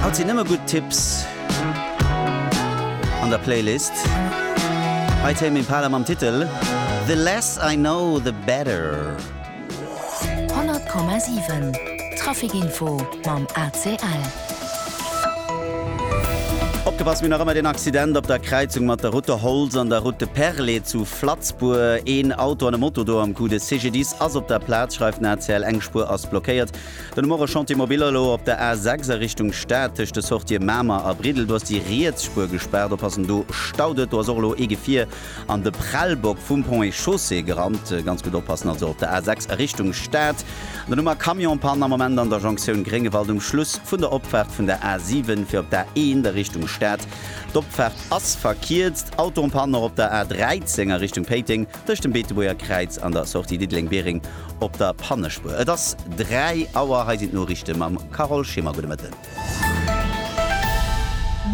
Haut sinn nëmme gutt Tipps an der Playlist. Hei Tame Impala mam Titel The less I know the better. 100,7 Trafic Info mam ACL. Opgepasst, mir hunn nach ëmmer deen Accident op der Kräizung mat der Route de Holtz an der Route de Perlé zu Flatzbourg. Een Auto an e Moto do am Coup. De CGDIS ass op der Plaz, schreift den ACL. Eng Spuer ass blockéiert. Dann hu mer e Chantier mobile elo op der A6 a Richtung Stad, tëscht de Sortië Mamer a Briddel. Do ass déi riets Spuer gespaart. Oppassen, do staut et. Do ass och elo ee Gefier an de Prellbock vum Pont et Chaussée gerannt. Ganz gutt oppassen also op der A6 a Richtung Stad. Dann hu mer Camionspanne am Moment an der Jonktioun Gréngewald um Schluss vun der Opfaart vun der A7 fir op d'A1 a Richtung Stad. D'Opfaart ass verkierzt. Auto en panne och op der A13 a Richtung Péiteng. tëscht dem Beetebuerger Kräiz an der Sortie Diddeleng-Biereng op der Pannespuer. Et ass 3 Auer, hei sinn d'Noriichte mam Carole Schimmer. Gudde Mëtten.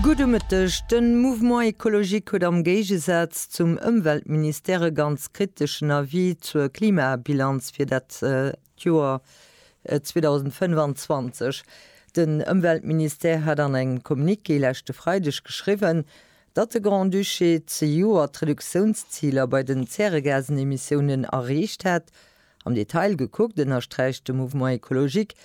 Gudde Mëtteg. De Mouvement Ecologique huet am Géigesaz zum Ëmweltministère e ganz kriteschen Avis zur Klimabilanz fir dat Joer 2025. Den Ëmweltministère hat an engem Communiqué leschte Freideg geschriwwen, Datt de Grand-Duché zejoert d'Reduktiounsziler bei den Zäregasenemissiounen erreecht hätt, am Detail gekuckt, ënnersträicht de Mouvement Ecologique,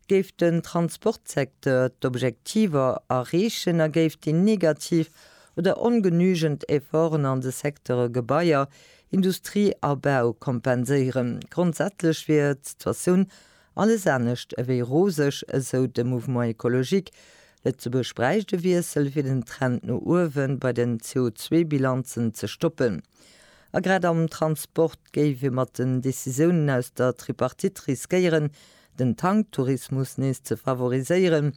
géif den Transportsecteur d'Objektiver erreechen a géif déi negativ oder ongenügend Efforten an de Secteure Gebaier, Industrie a Bau kompenséieren. Grondsätzlech wier d'Situatioun Alles anescht ewéi roseg, esou de Mouvement Ecologique. Lëtzebuerg bräicht e Wiessel, fir den Trend no uewe bei den CO2-Bilanzen ze stoppen. A grad am Transport géif ee mat den Decisiounen aus der Tripartite riskéieren, den Tanktourismus nees ze favoriséieren.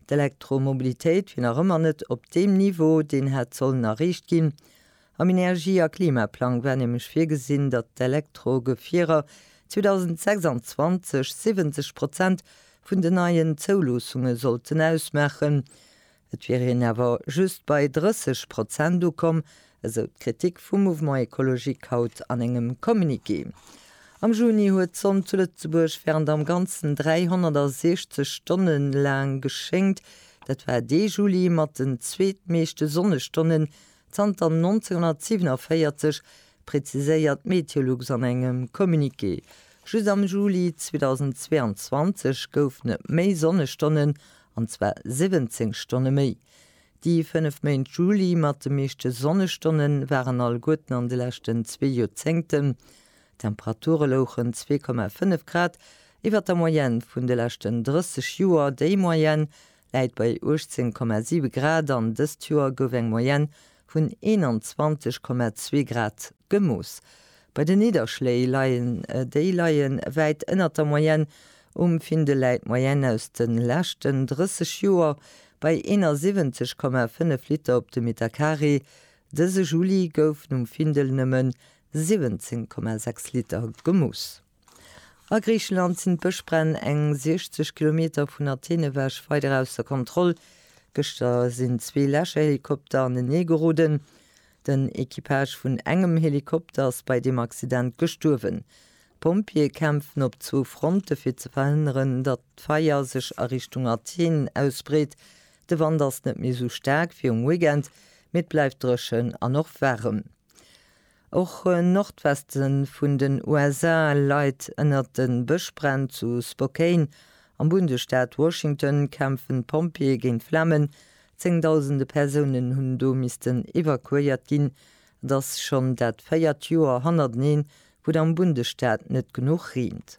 D'Elektromobilitéit wier nach ëmmer net op deem Niveau, deen hätt sollen erreecht ginn. Am Energie a Klimaplang war nämlech virgesinn, datt d'Elektrogefierer 2026 70 Prozent vun den neien Zouloossunge sollten ausmaachen. Et wier een awer just bei 30 Prozent ukomm, esou d'Kritik vum Mouvement Ecologique haut an engem Communiqué. Am Juni huet d'Sonn zu Lëtzebuerg wärend am Ganzen 360 Stonne laang geschéngt. Dat war dee Juli mat den zweetmeeschte Sonnestonnen Zanter 1947, präziséiert d'Meteolux an engem Communiqué. Just am Juli 2022 goufen et méi Sonnestonnen, an zwar 17 Stonne méi. Déi fënnef Méint Juli mat de meeschte Sonnestonne waren alleguerten an de leschten zwee Joerzéngten. D'Temperature louchen 2,5 Grad iwwer der Moyenne vun de leschten 30 Joer, déi Moyenne läit bei 18,7 Grad an dëst Joer gouf eng Moyenne vun 21,2 Grad gemooss. Bei den Nidderschléi leien déi leie wäit ënnert der Moyenne. Um Findel läit d'Moyenne aus de leschten 30 Joer bei 71,5 Liter op de Metercarré. Dëse Juli goufen um Findel nëmmen 17,6 Liter gemooss. A Griicheland sinn d'Bëschbränn eng 60 Kilometer vun Athen ewech weider ausser Kontroll. Gëschter sinn zwee Läscherhelikopter anenee geroden. Den Equipage vun engem Helikopter ass bei deem Accident gestuerwen. D'Pompjeeë kämpfen op zwou Fronte fir ze verhënneren, datt d'Feier sech a Richtung Athen ausbreet. De Wand ass net méi esou staark wéi um Weekend, mee et bleift dréchen an och waarem. Och en Nordweste vun den USA leit ënnert de Bëschbränn. Zu Spokane am Bundesstaat Washington kämpfen d'Pompjeeë géint d'Flamen. Zéngdausende Persounen hunn do missten evakuéiert ginn. Et ass schonn dat véiert Joer hannerteneen, wou et am Bundesstaat net genuch reent.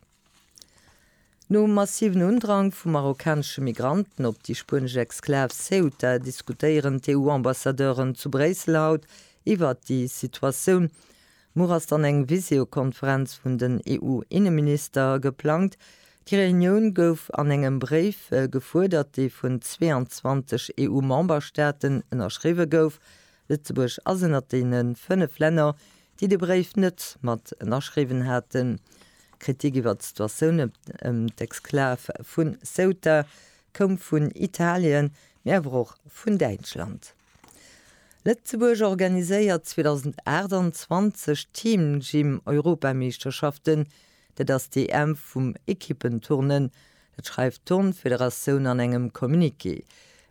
Nom massiven Undrang vu marokkanesche Migranten op déi spuenesch Exklav Ceuta diskutéieren d'EU-Ambassadeuren zu Bréissel haut iwwert déi Situatioun. Muer ass dann eng Viseokonferenz vun den EU-Inneminister geplangt. Déi Reunioun gouf an engem Bréif gefuerdert, dee vun 22 EU-Memberstaaten ënnerschriwwe gouf. Lëtzebuerg ass ënnert deene fënnef Länner, déi de Bréif net mat ënnerschriwwen haten. Kritik iwwer d'Situatioun ëm d'Exklav vu Ceuta koum vun Italien, mee awer och vun Däitschland. Lëtzebuerg organiséiert 2028 d'Team Gym Europameeschterschaften, Dat ass d'EM vum Ekippen-Turnen, dat schreift d'Turnfederatioun an engem Communiqué.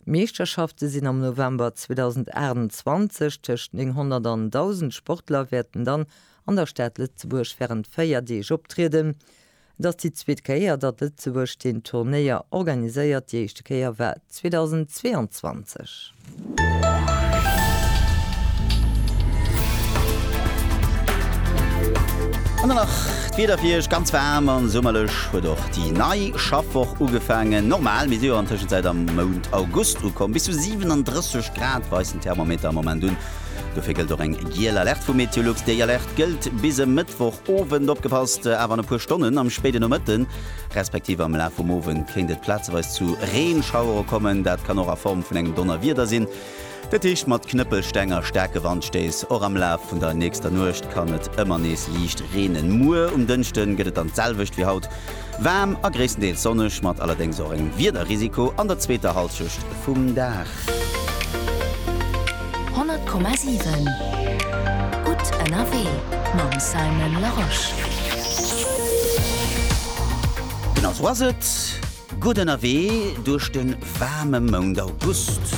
D'Meeschterschafte sinn am November 2028. Tëscht 900 an 1.000 Sportler wäerten dann an der Stad Lëtzebuerg wärend 4 Deeg optrieden. Et ass déi zweet Kéier, datt Lëtzebuerg deen Turnéier organiséiert, déi éischte Kéier war 2022. An dann nach d'Wieder fir Iech, ganz waarm an summerlech huet och déi nei Schaffwoch ugefaangen. Normal, mir si jo an Tëschenzäit am Mount August ukomm. Bis zu 37 Grad weist den Thermometer am Moment un. Dofir gëllt och eng giel Alerte vu Meteolux. Déi Alerte gëllt bis e Mëttwoch Owend. Opgepasst awer an e puer Stonnen am spéiden Nomëtten. respektiv am Laf vum Owend kéint et plazeweis zu Reenschauere kommen, dat kann och a Form vun engem Donnerwieder sinn, dat heescht mat Knëppelsteng a staarke Wandstéiss. Och am Laf vun der nächster Nuecht kann et ëmmer nees liicht reenen. Muer um Dënschde gëtt et dann d'selwecht wéi haut, waarm a gréisstendeels sonneg, mat allerdéngs och engem Wiederrisiko an der zweeter Hallschecht vum Dag. 100,7 Gutt ënnerwee mam Simon Larosche. Den A was et? Gutt ënnerwee duerch de waarme Mount August.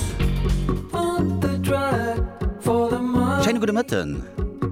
Schéine gudde Mëtten.